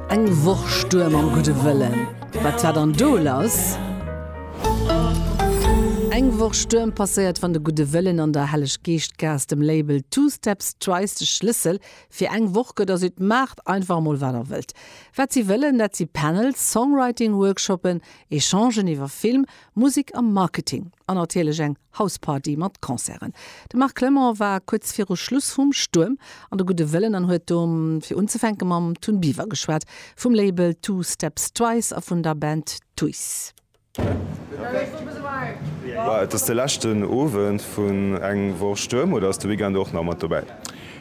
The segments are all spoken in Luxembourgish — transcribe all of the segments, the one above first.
Eng Woch Stuerm am gudde Wëllen, wat war dann do lass? Eng Woch Stuerm passéiert, wann de gudde Wëllen an der Helleg Geescht Gaass dem Label Two Steps Twice de Schlëssel fir eng Woch gëtt a seet, Maacht einfach emol wat der wëllt. Wat si wëllen, dat si Panels, Songwriting-Workshoppen, Echangen iwwer Film, Musek a Marketing an natierlech eng Hausparty mat Concerten. De Marc Clement war kuerz viru Schluss vum Stuerm an de gudde Wëllen an huet do fir unzefänke mam Tun Biver geschwat, vum Label Two Steps Twice a vun der Band Twice. Et ass de leschten Owend vun eng Woch Stuerm oder ass de Weekend och nach mat dobäi?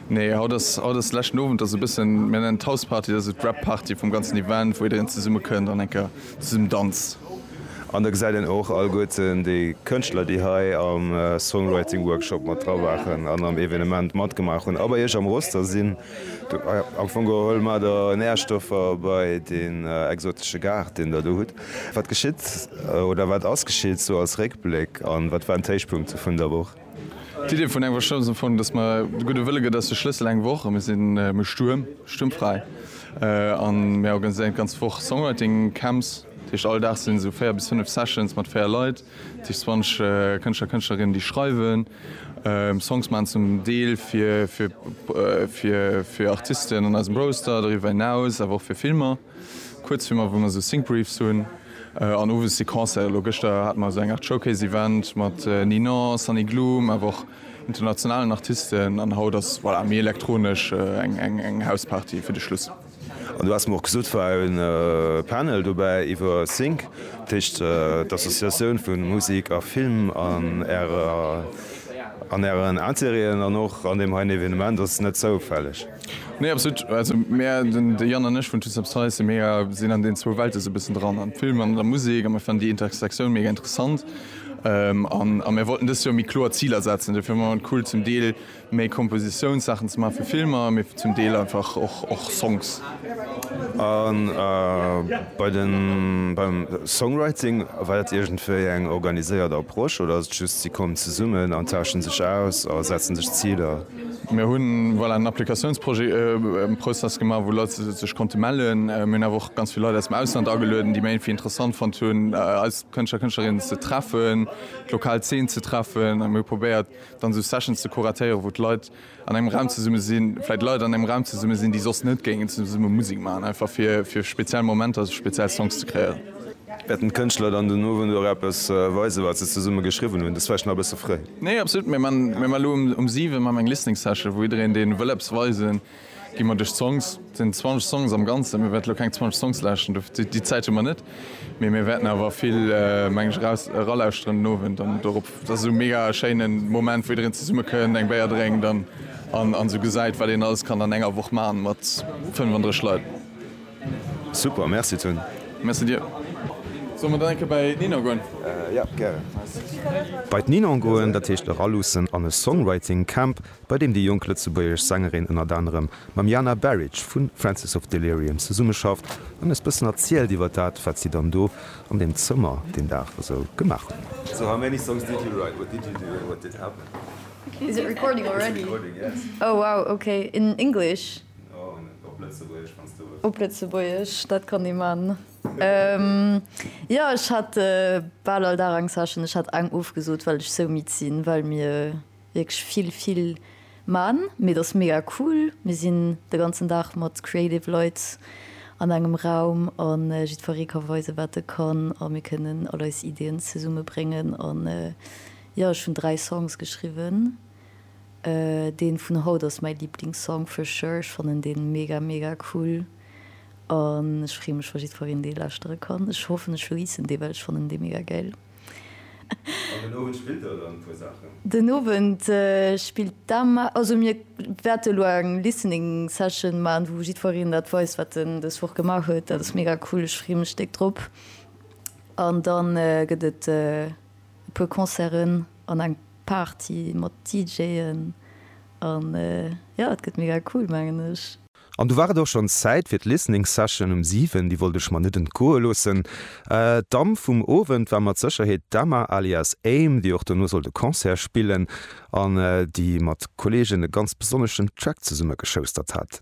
Nee, haut ass haut ass leschten Owend, ass e bëssen, mir nennen et Hausparty, dat ass esou d'Wrap-Party vum ganzen Event, wou jiddereen zesummekënnt an eng Kéier zum Danz. An da gesäit een och alleguerten déi Kënschtler, déi hei am Songwriting Workshop mat dra waren an am Evenement matgemaach hunn a bei Iech am Roster sinn. Am Fong geholl mat der Nährstoffer bei deen exotesche Gaart, deen Der do hutt. Wat geschitt oder wat ass geschitt sou als Réckbléck an wat waren d'Héichpunkte vun der Woch? D'Idee vun engem Workshop ass am Fong, dass mer, de gudde Wëlle gëtt eis de Schlëssel, eng Woch, mir sinn méi stuerm, stuermfräi an mir organiséieren d'ganz Woch Songwriting Camps. Dat heescht, all Dag sinn esou 4 bis 5 Sessions mat 4 Leit, dat heescht 20 Kënschtler, Kënschtlerinnen, déi schreiwen, Songs maachen, zum Deel fir Artisten an eisem Roster, doriwwer hinaus awer och fir Filmer. Kuerzfilmer wou mer sou Sync-Briefs hunn an owes Sequencen. Elo gëschter hate mer sou eng Art Showcase-Event mat Ninon, Sunny Gloom awer och internationalen Artisten an haut ass voilà méi elektronesch eng eng House-Party fir de Schluss. An du haass mer och gesot war en Panel dobäi iwwer Sync, dat heescht d'Associatioun vu Musik a Film an ärer an ären Interêten an och an deem heien Evenement ass net zoufälleg. Nee absolut, also mär den de Yann an ech vun Toots Up Size mega sinn an den zwou Welten sou bëssen dran am Film an der Musek a mir fannen déi Intersektioun mega interessant an a mir wollten dëst Joer méi kloer Ziler setzen. Dofir fannen mer et cool zum Deel méi Kompositiounssachen ze maachen fir Filmer mee zum Deel einfach och och Songs. A bei de beim Songwriting, war dat iergendwéi eng organiséiert Approche oder ass et just si kommen zesummen an tausche sech aus a setzen sech Ziler? Mir hunn voilà en Applikatiounsprojet, en Process gemaach, wou Leit sech konnte mellen. Mir hunn awer och ganz vill Leit aus dem Ausland agelueden, déi Mailfi interessant fonnt hunn, eis Kënschtler, Kënschtlerinnen ze treffen, d'lokal Zeen ze treffen. A mir hu probéiert, dann esou Sessions ze kuratéieren, wou d'Leit an engem Raum zesumme sinn, vläicht Leit an engem Raum zesumme sinn, déi soss net géingen zesumme Musek maachen, einfach fir speziell Momenter, speziell Songs ze kreéieren. Wäerten d'Kënschtler dann den Owend och eppes weisen, wat se zesumme geschriwwen hunn? Dat ass vläicht nach e bësse fréi. Nee, absolut. Mir man elo um 7 man eng Listening Session, wou jiddereen deen wëll eppes weisen, gi mer duerch d'Songs. Et sinn 20 Songs am Ganzen. Mir wäerten elo keng 20 Songs lauschten, dofir déi Zäit hu mer net. Mee mir wäerten awer vill, meng ech, eraus eralauschteren den Owend an dorop. Dat ass esou e mega schéinen Moment, wou jiddereen zesumme kënnt, eng Béier drénkt an an esou gesäit, wat een alles kann an enger Woch maachen mat 35 Leit. Super, merci Toon. Merci dir. Solle mer dann eng Kéier bei d'Ninon goen? Jo, gären. Bei d'Ninon goen, dat heescht eraluussen an e Songwriting Camp, bei deem déi jonk lëtzebuergesch Sängerin ënnert anerem mam Jana Baric vu Francis of Delirium zesummeschafft an eis bëssen erzielt iwwer dat, wat si dann do an deem Zëmmer deen Dag esou gemaach hunn. So how many songs did you write? What did you do and what did happen? Is it recording already? It's recording, yes. Oh wow, okay, in English? Op Lëtzebuergesch, dat kann ee man. Jo, ech hat bal all Dag eng Session. Ech hat eng ofgesot, well ech sou midd sinn, well mir wierklech vill, vill man. Mee et ass mega cool. Mir sinn de ganzen Dag mat creative Leit an engem Raum a jiddweree ka weisen, wat e kann a mir kënnen all eis Ideeën zesummebréngen. An jo, ech hunn dräi Songs geschriwwen. Deen vun haut ass mäi Liblingssong for sure, ech fannen deen mega mega cool an ech freen mech wa jiddfereen deen lauschteren kann. Ech hoffen ech releasen deen well ech fannen deen mega gäil. An den Owend spillt der dann e puer Saachen? Den Owend spillt d'Emma, also mir wäerten elo eng Listening Session maan wou jiddfereen dat weist wat en des Woch gemaach huet. Dat ass mega cool, ech freen mech déck drop. An dann gëtt et e puer Concerten an eng. Party mat DJen an jo et gëtt mega cool mengen ech. An du war et och schonns Zäit fir d'Listening Session um 7, déi wollt ech mer net entgoe loossen. D'Damm vum Owend war mat Sécherheet d'Emma alias Aim, déi och dono sollt e Concert spillen an déi mat Kolleegen e ganz besonneschen Track zesumme geschoustert hat.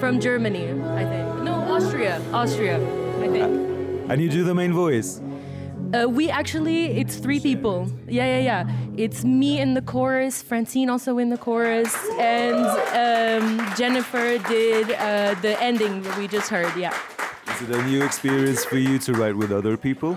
From Germany I think no Austria Austria I think And you do the main voice? Uh we actually it's three people yeah yeah yeah it's me in the chorus Francine also in the chorus and um Jennifer did uh the ending we just heard yeah Is it a new experience for you to write with other people?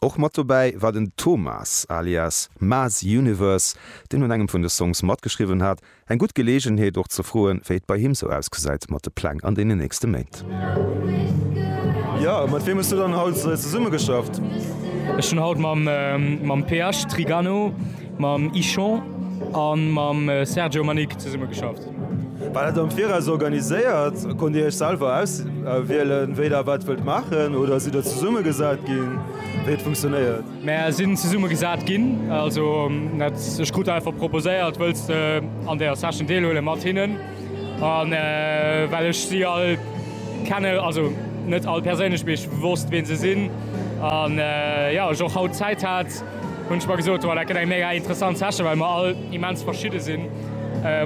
Och mat dobäi war den Thomas alias Maes Universe, deen un engem vun de Songs matgeschriwwen hat. Eng gutt Geleegenheet och ze froen, wéi et bei him sou ausgesäit mat de Pläng an deenen nächste Méint. Jo, mat wiem hues du dann haut zesumme geschafft? Ech hunn haut mam PH Trigano, mam Ichon a mam Sergio Manic zesumme geschafft. War dat am Viraus organiséiert? Konnt Dir Iech selwer auswielen, wéi Der wat wëllt maachen oder sidd Der zesumme gesat ginn? Wéi et funktionéiert? Mär sinn zesumme gesat ginn. Also net ech krut einfach proposéiert, wëlls de an där Session deelhuele mat hinnen? An well ech si all kenne, also net all perséinlech, mee ech wosst, wee se sinn an jo, ech och haut Zäit hat, Hunn ech mer gesot, wow, dat gëtt eng mega interessant Session, well mer all immens verschidde sinn,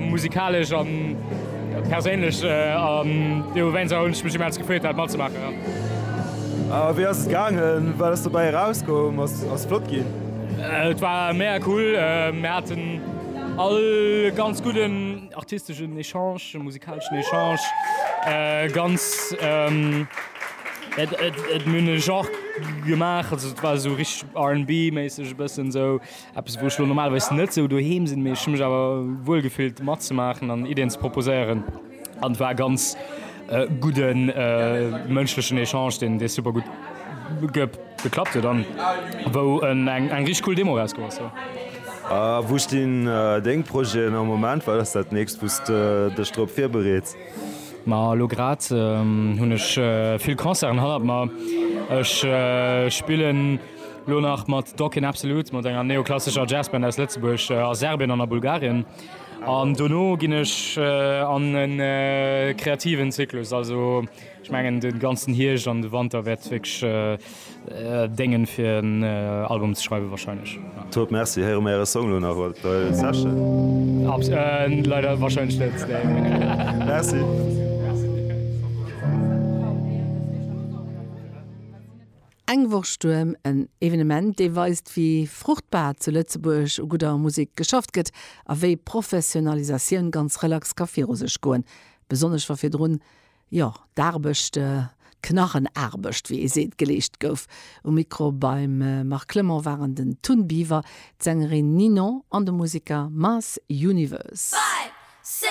musikalesch a perséinlech. An dowéinster hunn ech mech immens gefreet, dat matzemaachen. A wéi ass et gaangen? Wat ass dobäi erauskomm? Ass flott ginn? Et war mega cool. Mir haten all e ganz gudden. Artisteschen Echange, musikaleschen Echange, ganz, et hunn en Genre gemaach, also et war esou richteg RNB méisseg, e bëssen esou eppes wou ech elo normalerweis net esou doheem sinn, mee ech hu mech awer wuel gefillt matzemaachen an Iddien ze proposéieren an war ganz Gudden mënschlechen Echange deen dee super gutt geklappt huet an wou eng richteg cool Demo erauscomm ass jo. A wou stinn deng Projeten am Moment? Wat ass dat nächst wou s de dech drop virbereets? Ma elo grad hunn ech vill Concerten hannert mer. Ech spillen elo nach mat Dokken Absolut, mat enger neoklassescher Jazzband aus Lëtzebuerg, a Serbien an a Bulgarien. An dono ginn ech an e kreativen Zyklus. Also ech mengen de ganzen Hierscht an de Wanter wäert wierklech déngen, fir en Album ze schreiwen warscheinlech, jo. Top, Merci. Héiere mer äre Song elo nach mat der Session? Abs. Leider warscheinlech net, nee. Merci. Eng Woch Stuerm, en Evenement, dee weist, wéi fruchtbar zu Lëtzebuerg u gudder Musek geschafft gëtt a wéi Professionalisatioun ganz relax ka viru sech goen, besonnesch wa virdrun, jo, d'Aarbecht, d'Knarrenaarbecht, wéi ee seet, geleescht gouf. Um Mikro beim Marc Clement waren den Tun Biver, d'Sängerin Ninon an de Musiker Mass Universe. Five, six.